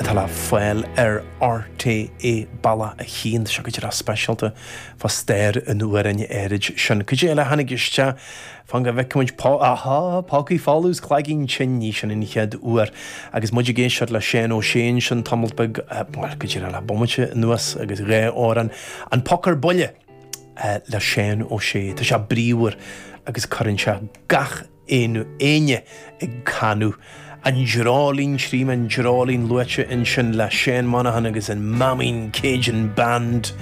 atá le fáil ar RTÉ Balla 1, seo go dtí lá speisialta fá stair an amhráin áirid sin. Cuid eile a tháinig isteach fan go bhfeicimid pá, ahá, Pócaí Folamh is Cloigeann Tinn, ní sin an chéad uair agus muid ag éisteacht le Seán Ó Sé ansin tamalt beag, bhuel, go dtí le bomaite anuas agus dhá amhrán, An Poc ar Buile le Seán Ó Sé, tá sé bríomhar agus cuireann sé gach aon duine ag canadh An Dreoilín tchím an Dreoilín luaite ansin le Seán Monaghan agus an Maimín Cajun Band.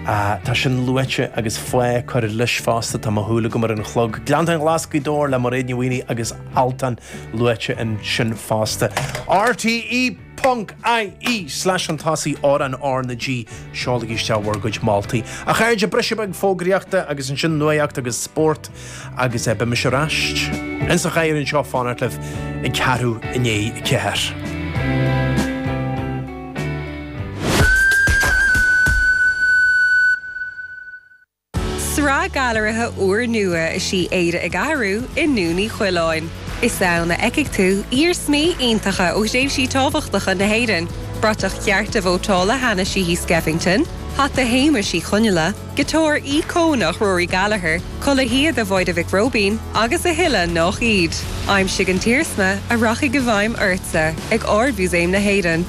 Ahh, tá sin luaite agus faoi cur leis fosta, tá mo shúil agam ar an chlog. Gleanntáin Ghlas Ghaoth Dobhair le Mairéad Ní Mhaonaigh agus Altan luaite ansin fosta. RTÉ. Ponc IE slash an tás í ár an R na G seolaigí isteach bhur gcuid moltaí. A chairde briseadh beag fógraíochta agus ansin nuaíocht agus spórt agus eh beidh mise ar ais ins an chathaoir anseo ag fanacht libh ag ceathrú i ndiaidh a ceathair. Sraith gailearaithe úrnua is í Éire ag Athrú i nDún Uí Choileáin. Is ann a fheicfidh tú iarsmaí iontacha ó thréimhsí tábhachtacha na hÉireann, bratach chearta vótála Hanna Sheehy Skeffington, hata Shéamuis Uí Chonghaile, giotár íocónach Rory Gallagher, culaith shíoda Mháire Mhic Róibín agus a thuilleadh nach iad. Aimsigh an t-iarsma a rachaidh i bhfeidhm ortsa ag Ard-Mhúsaem na hÉireann.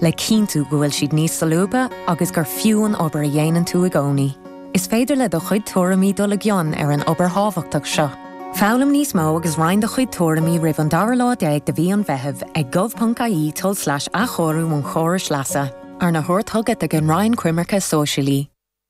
le cinntiú go bhfuil siad níos solúbtha agus gur fiú an obair a dhéanann tú i gcónaí. Is féidir le do chuid tuairimí dul i gcion ar an obair thábhachtach seo. Foghlaim níos mó agus roinn do chuid tuairimí roimh an dara lá déag de mhí an Mheithimh ag gov.ie tulslais athchóiriú an chórais leasa, arna thabhairt chugat ag an Roinn Coimirce Sóisialaí.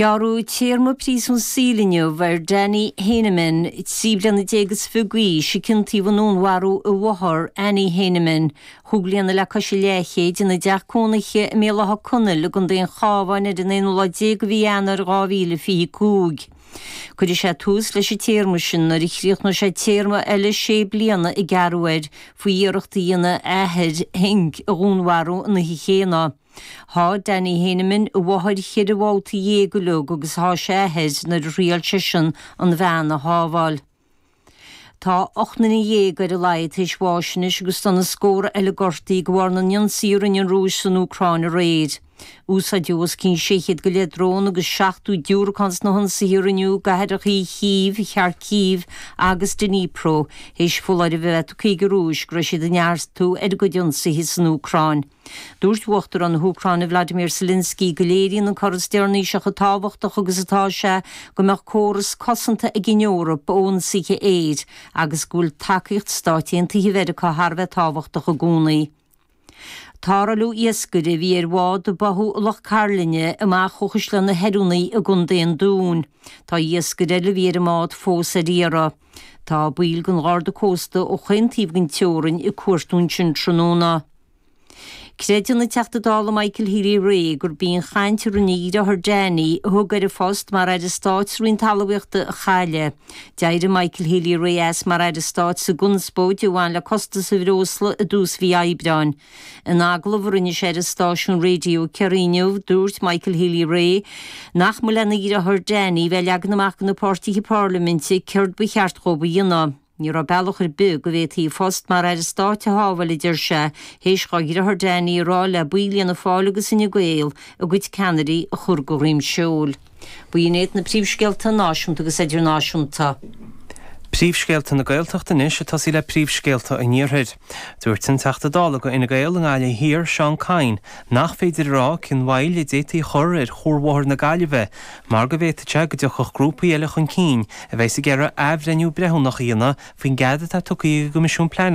Gearradh téarma príosúin saoil inniu ar Danny Heyneman, trí bliana déag is fiche d'aois, a ciontaíodh i ndúnmharú a mháthar, Annie Heyneman, chúig bliana le cois an leathchéid, ina dteach cónaithe i mBéal Átha Conaill i gContae an Chábháin ar an aonú lá déag de mhí Eanáir 2025. Cuirfidh sé tús leis an téarma sin nuair a chríochnóidh sé téarma eile sé bliana a gearradh air faoi iarracht a dhéanamh a athair, Henk, a dhúnmharú an oíche chéanna. Sháigh Danny Heyneman a mháthair cheithre bhabhta dhéag uilig agus sháigh sé a athair nuair a thriail seisean an bhean a shábháil. Tá ocht nduine dhéag ar a laghad tar éis bháis anois agus tá na scórtha eile gortaithe de bharr na n-ionsaithe a rinne an Rúis san Úcráin aréir. Úsáideadh os cionn sé chéad go leith drón agus seachtó diúracán sna hionsaithe a rinneadh i gcathrachaí Chív, Kharkiv agus Dnipro théis foláirimh a bheith tugtha ag an Rúis go raibh siad ag neartú ar a gcuid ionsaithe san Úcráin. Dúirt Uachtarán na hÚcráine Vladimir Zelensky go léiríonn an cor is deireanaí seo chomh tábhachtach agus atá sé go mbeadh córas cosanta ag an Eoraip ó ionsaithe aeir agus go bhfuil tacaíocht Stáit Aontaithe Mheiriceá thar a bheith tábhachtach i gcónaí. Tarrtháladh iascaire a bhí ar bhád a báthadh i Loch Cairlinne amach ó Chaisleán na hOireanaí i gContae an Dúin. Tá iascaire eile a bhí ar an mbád fós ar iarraidh. Tá baill den Gharda Cósta ó chaon taobh den teorainn ag cuartú ansin tráthnóna. Creideann an Teachta Dála Michael Healy Rae gurb í an chaint a rinne a dhriotháir Danny, a thug air a phost mar Aire Stáit sa Roinn Talmhaíochta a chailleadh. D'éirigh Michael Healy Rae as mar Aire Stáit sa gconspóid a bhain le costas an bhreosla i dtús mhí Aibreáin. In agallamh a rinne sé ar an stáisiún raidió Kerry inniu, dúirt Michael Healy-Rae nach mba lena dhriotháir Danny bheith leagan amach do na páirtithe parlaiminte céard ba cheart dhóibh a dhéanamh. Ní raibh bealach ar bith go bhféadfaí a phost mar Aire Stáit a shábháil a deir sé, théis dhá dhriotháir Danny a rá le baill Fhianna Fáil agus Fhine Gael a gcuid ceannairí a chur de dhroim seoil. Ba in iad na príomhscéalta náisiúnta agus idirnáisiúnta. Príomhscéalta na Gaeltachta anois ag tosaí le príomhscéalta an Iarthair. Dúirt an Teachta Dála do Fhine Gael i nGaillimh Thiar, Seán Kyne, nach féidir a rá cén mhoill a d'fhéadfaí a chur ar chuarbhóthar na Gaillimhe mar go bhféadfadh sé go dtiocfadh grúpaí eile chun cinn a bheidh ag iarraidh athbhreithniú breithiúnach a dhéanamh faoin gcead atá tugtha ag an gCoimisiún